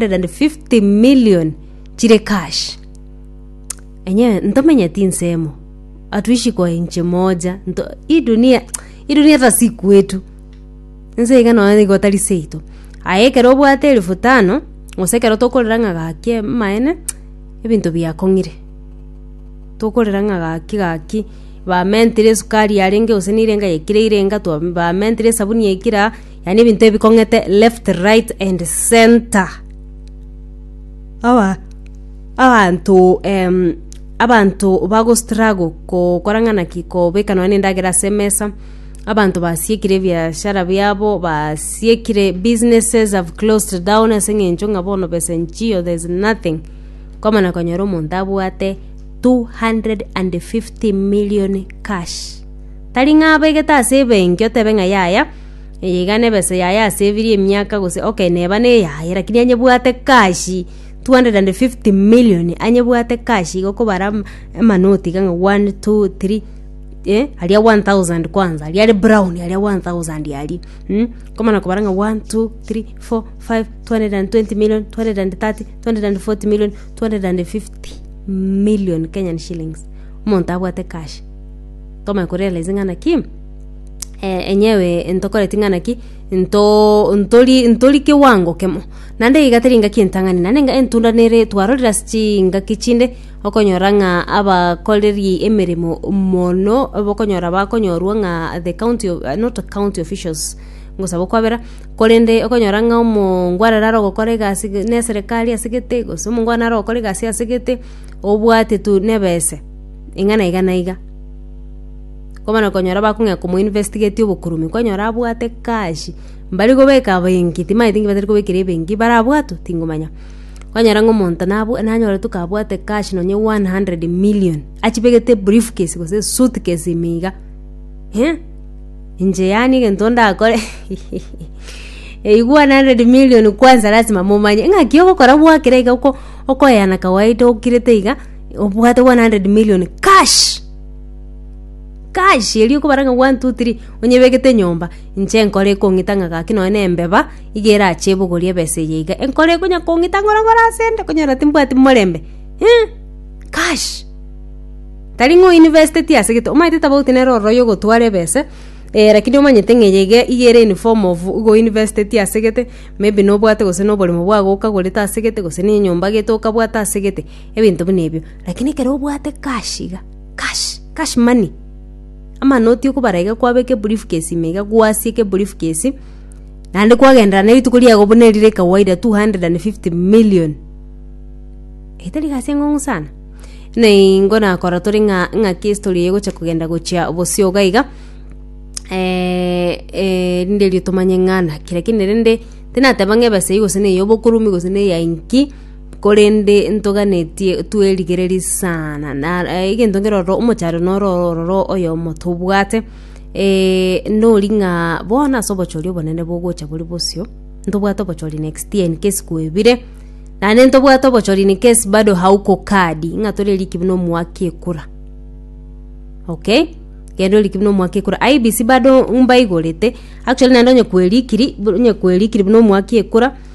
150 million chire cash enye ntomenye tinsemo atuishi kwa inchi moja nto hii dunia hii dunia hata si kwetu nse iga nonya nigo tari seito aye ekero obwate elfu tano gose ekero tokorera ng'a gaki amaene ebinto biakong'ire tokorera ng'a gaki gaki bamentire esukari yarenge gose nere enga yaikire ire enga twa bamentire esabuni yaikire aa. yani ebinto ebikong'ete left right and center aba abanto em, abanto bagostrago gokora ng'ana ki kobeka nonya endagera ase emesa abanto basiekire ebiashara biabo basiekire businesses have closed down ase eng'encho ng'a bono besa nchio there's nothing kwamana konyora omonto abwate 250 million cash tari ng'a abegete ase ebenki otebe ng'a yaya Eye iga nebesa yaye asevirie emiaka gose okay neba neyaye lakini anyebwate cash 250 million anyebwate cash iga okobara ama amanoti iga ng'a one two three eh aria 1000 kwanza aria are brown aria 1000 aria mmh komana kobara ng'a one two three four five 220 million 230 240 million 250 million Kenyan shillings omonto abwate cash tomanye korealize ng'a naki. eh, enyewe ntokoreti ng'a naki nto ntori ntori kiwango kemo naende iga teri ngaki entang'ani naende nga entunda nere twarorire ase chingaki chinde okonyora ng'a abakoreri emeremo mono bokonyora bakonyorwa ng'a the county of not county officials ngosaba okwabera korende okonyora ng'a omongwana nare ogokora egasi iga na eserekari ase gete gose omongwana nare ogokora egasi ase gete obwate tu na ebese ing'ana iga na iga. Komana konyora bakong'ea komo investigatia obokurumin kwanyora abwate kashi mbari kobeka benki timaeti nki batari kobekera ebenki barabwatu tingomanya kwanyora ng'a omonto nabw nanyoretwe kabwate kash nonye one hundred million achibegete brief case gose esuit case ime iga eh inche yaani egento ndakore eywo one hundred million kwansa lasima momanye ng'aki ogokora gwakire iga oko okoyana kawaida okirete iga obwate one hundred million kash. Kash! Erio okobara ng'a one, two, three, onyebegete nyomba, inche nkore ekong'ita ng'a gaki nonye na embeba, iga erache ebogori ebesa eye iga, enkore ekonya kong'ita ng'ora ng'ora ase ende okonyora timbwati morembe eh, kash! Tari ng'a o investeti ase egete, omanyete tobauti nere ororo oyogotwara ebesa, eh rakini omanyete ng'a eye iga iga ere in form of igo o investeti ase egete, maybe nobwate gose na oboremo bwago okagorete ase egete gose na enyomba gete okabwata ase egete, ebinto buna ebio. Rakini ekero obwate kash iga. Kash! Kash money! Amanoti okobara iga kwaaba ekebriefcase ime iga gwasia ekebriefcase, naende kwagenderera na rituko riago buna eri rire kawaida 250 million. Eye tari egasi enkong'u sana. Buna ingo nakora tore ng'a ng'aki estory eye egocha kogenda gochia bosio iga iga, rinde erio tomanye ng'a naki. Lakini rende, tinateba ng'a ebesa eyio gose ney'obokoromi gose neya inki. korende ntoganetie twerigererie sana na eh, egento nkerororo omochando noro ororo oyomo tobwate eh, nori ng'a bono ase obochori obonene bogocha bori bosio ntobwate obochori next year in case kwebire naende ntobwate obochori in case bado hauko kadi ng'a tore eriki buna omwaka ekura okay kende oriki buna omwaka ekura IEBC bado mbaigorete actually naende onye kwerikiri bu- onye kwerikiri buna omwaka ekura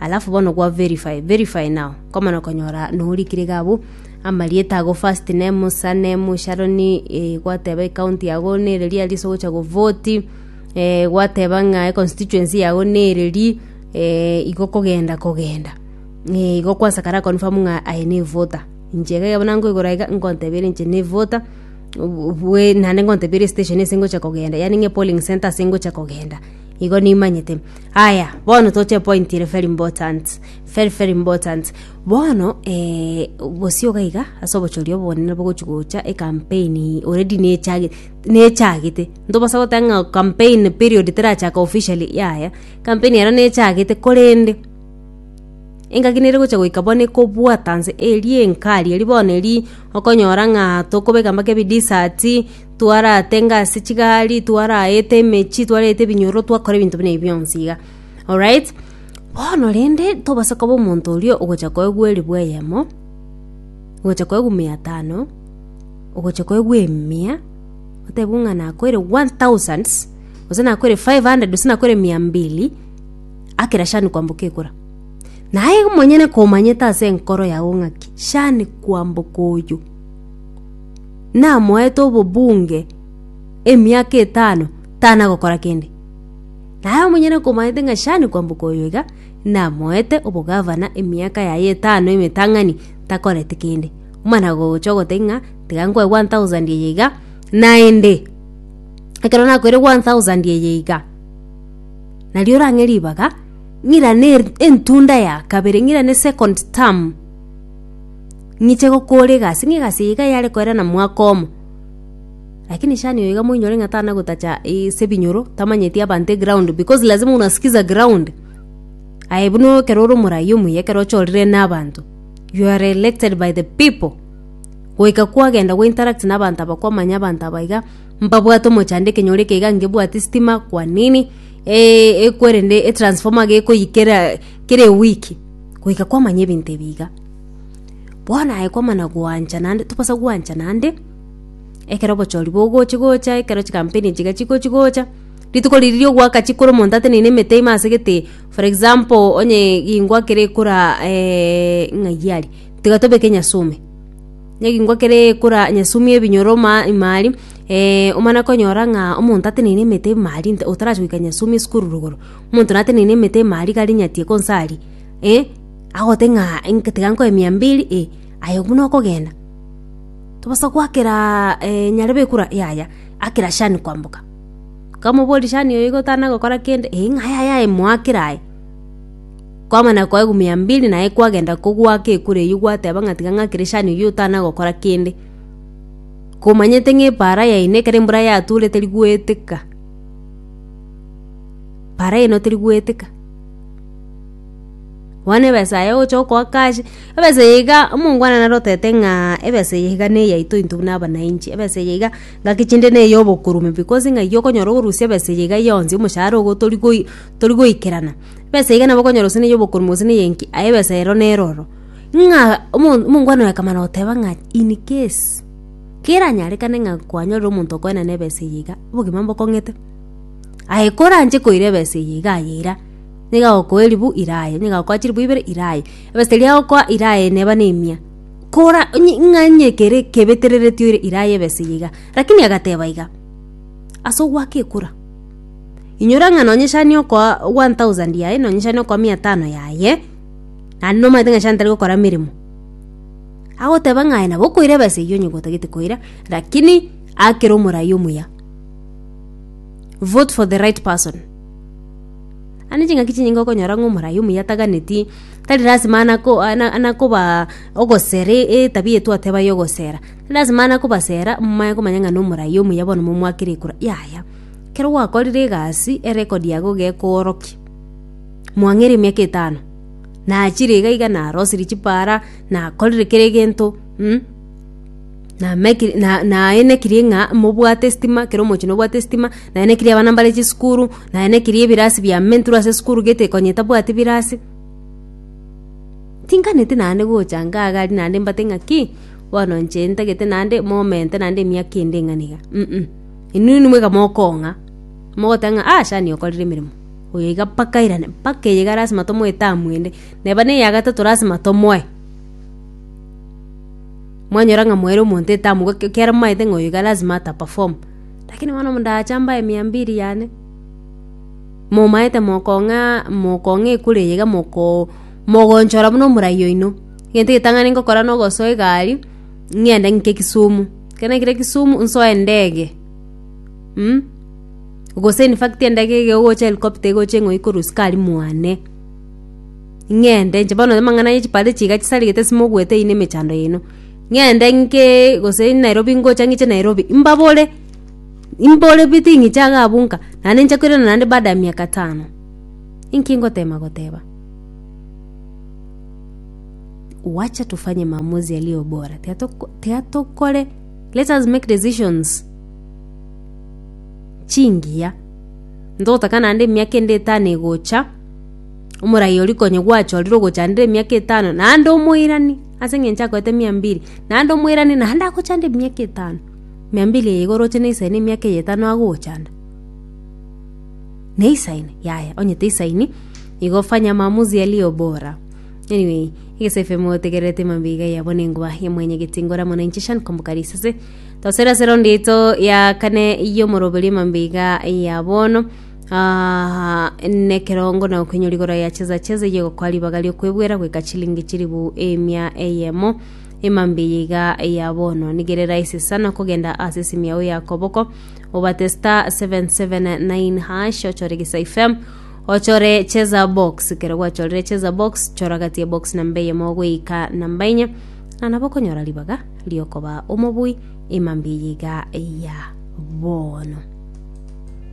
alafu bono gwa verify verify now nkomana konyora norikire iga abwo amarieta ago first name sir name Sharon eh, gwateba ekaunti yago nereri aria ase ogocha govoti eh, gwateba ng'a econstituency yago nereri eh, igo kogenda kogenda eh, igo kwasakara confirm ng'a aye nevota inche iga bono nkoigora iga nkontebera inche nevota bwe nande nkontebera estation ase ngocha kogenda yani ng'e polling center ase ngocha kogenda Igo nimanyete. Aya, bono toche epointi ere very important. Very very important. Bono eh, gosio iga iga ase obochoria obonene nabo gochi gocha ecampaign already nechage nechagete. Ntobasa goteba ng'a campaign period terachaka officially yaya. Campaign ero nechagete korende, engaki nere gocha goika bono ekobwata nse eria enkari eria bono eria okonyora ng'a tokobeka mpaka ebidesati, twaratenga ase chigari twaraete emechi twaraete ebinyoro twakora ebinto buna ebi bionsi iga alright bono rende tobasa koba omonto oria ogocha koegwa elifu eyemo ogocha koegwa mia tano ogocha koegwa emia otebwe ng'a nakoire one thousand gose nakoire five hundred gose nakoire mia mbili akera shani kwamboka ekora naye omonyene komanyete ase enkoro yago ng'aki shani kwamboka oyo. namoete obobunge emiaka etano tana gokora kende. Naye omonyene komanyete ng'a Shani kwamboka oyo iga namoete obogavana emiaka yaye etano emetang'ani takoreti kende. Mana gocha ogoteba ng'a tiga nkoe one thousand eye iga naende ekero nakoire one thousand eye iga nario orang'e ribaga ng'irane entunda ya kabere ng'irane second term. Ng'iche gokoora egasi, ng'a egasi eye iga yare koerana mwaka omo. Lakini shani oyo iga moinyore ng'a tana gotacha ase ebinyoro, tamanyeti abanto eground because lazima unasikiza ground. Aye buna ekero ore omoraai omuya ekero ochorire na abanto, you are elected by the people, goika kwagenda go interact na abanto aba kwamanya abanto aba iga, mbabwate omochando ekenyoro eke iga ngebwati estima, kwa nini ekwerende etransformer gekoyia kera kera ewiki, goika kwamanya ebinto ebi iga. Bono aye kwamana gwancha naende tobasa gwancha naende, ekero obochori bogochia gocha, ekero chikampeni echi chigochia gocha, rituko riria ria ogwaka chikoro omonto ateneine emete ime ase egetee, for example onye egengwa kere ekora ng'ai aria, tiga tobeke nyasume, na egengwa kere ekora nyasume ya ebinyoro ma ime aria, omana konyora ng'a omonto ateneine emete ime aria nta- otarachi goika nyasume esukuru rogoro, omonto nateneine emete ime aria gari nyatieka onsi aria. agote ng'a tiga nkoe mia mbiri, ee, aye buna okogenda, tobasa goakera nyarebe ekura? Yaya, akera shani kwamboka. Kamoboria shani oyo iga otanagokora kende? Ee, ng'a aye aye aye moakere aye. Kwamana koegwa mia mbiri naye kwagenda kogoaka ekura eywo gwateba ng'a tiga ng'akere shani oyio otanagokora kende, komanyete ng'a epaara yaino ekero embura yature teri goeteka, paara yaino teri goeteka. Bono ebesa yaye ogocha gokoa kazi, ebesa eye iga omongwana naro otete ng'a ebesa eye iga neyaito intwe buna abanainchi, ebesa eye iga ngaki chinde na eyobokurume because ng'a iga okonyora okorusia ebesa eye iga yonsi omoshahara ogo tori goi tori goikerana. Ebesa iga nabo okonyora gose na eyobokurume gose na eyenki aye ebesa ero nero oro. Ng'a omo omongwana oye akamana goteba ng'a in case keranyarekane ng'a kwanyorire omonto okoenana ebesa eye iga, obogima mbokong'ete. Aye koranche koira ebesa eye iga ayeira. niga agokoa eribu ira aye, niga agokoa chiribu ibere ira aye. Ebaseri eria agokoa ira aye neba nemia. Kora onye- ng'a onye kere kebetereretio ire ira aye ebesa eye iga. Rakini agateba iga, ase ogoaka ekura, inyora ng'a nonye shani okoa one thousand yaye, nonye shani okoa mia tano yaye, naende nomanyete ng'a shani tari gokora emeremo. Agoteba ng'a aye nabo okoira ebesa eyio onye gotagete koira, rakini akere omorai omuya. Vote for the right person. Ande ching'aki chinyinge okonyora ng'a omoraai omuya ataganeti, tari lasima ana ko- ana ana kobaa ogosera etabia eye twateba ya ogosera. Tari lasima ana kobasera momanye komanya ng'a nomoraai omuya bono momoakere ekura, yaya. Ekero gwakorire egasi, erecord yago iga ekoorokia. Mwang'eire emiaka etano, nachire iga iga narosirie chipara, nakorire kera egento, mmh. Nameki na- naenekirie ng'a mobwate estima kera omochie nobwate estima, naenekirie abana mbare chisukuru, naenekirie ebirasi bia mentwe ase esukuru gete konye tabwati birasi, tinganeti naende gocha nkaa agari naende mbate ng'aki, bono inche ntagete naende moment naende emiaka ende eng'ana iga um. Inwe nimweka mokong'a, mogoteba ng'a aa shani okorire emeremo, oyo iga mpaka airane, mpaka eye iga lasima tomoe etamu ende, neba na eyagatato lasima tomoe. Mwanyora ng'a moere omonto etabu, gaki ekero momaete ng'a oyo iga lazima ata perform, lakini bono ndacha mbae mia mbiri yane, momaete mokong'aa mokong'aa ekura eye iga mokoo mogonchora buna omorai oino, egento egetang'ani ngokora na ogosoa egari, ng'ende ng'ike kisumu, ekero naikire kisumu, nsoe endege mm gose in fact endege iga egocha helicopter egocha eng'oe korwa sukari mwane. Ng'ende, inche bono amang'ana ye chipande chiga chisarigete simoguete ime emechando yaino. Ng'ende nke gose Nairobi ngocha ng'iche Nairobi, mbabore, mbore pi ting'iche iga abwo nka, naende nche koirana naende baada ya miaka tano. Inki ngotema goteba? Wacha tufanye maamuzi yaliyo bora, tiga toko tiga tokore, let us make decisions chingiya, ntotaka naende emiaka ende etano egocha. Omoraia oria konya gwachorire ogochandera emiaka etano, naende omoirani, ase eng'encho akoete mia mbiri, naende omoirani naende agochanda emiaka etano, mia mbiri eye iga oroche neisaine emiaka eye etano agogochanda? Neisaine? Yaya, onye teisaini, igo fanya maamuzi yaliyo bora. Anyway, egese FM otegererete emambia iga eyabo na engoba ya mwenye getingo ramo na inche Shan Komboka Risase. Tosera ase raundi yaito ya kane y'omoroberio emambia iga eyia bono. Nekerongo na gokoinyora igoro ya chesa chesa eyio egokoa ribaga ri'okwebwera goika chilingi chilifu emia eyemo ema mbiya iga ya bono. Nigo ere rahisi sana kogenda ase esimu yao ya koboko obate star 779 hash ochore gisa ifem ochore chesa box ekero gwachorire chesa box chora gati ya box namba eyemo goika namba enye na nabo okonyora ribaga ri'okoba omobui ema mbiya iga ya bono.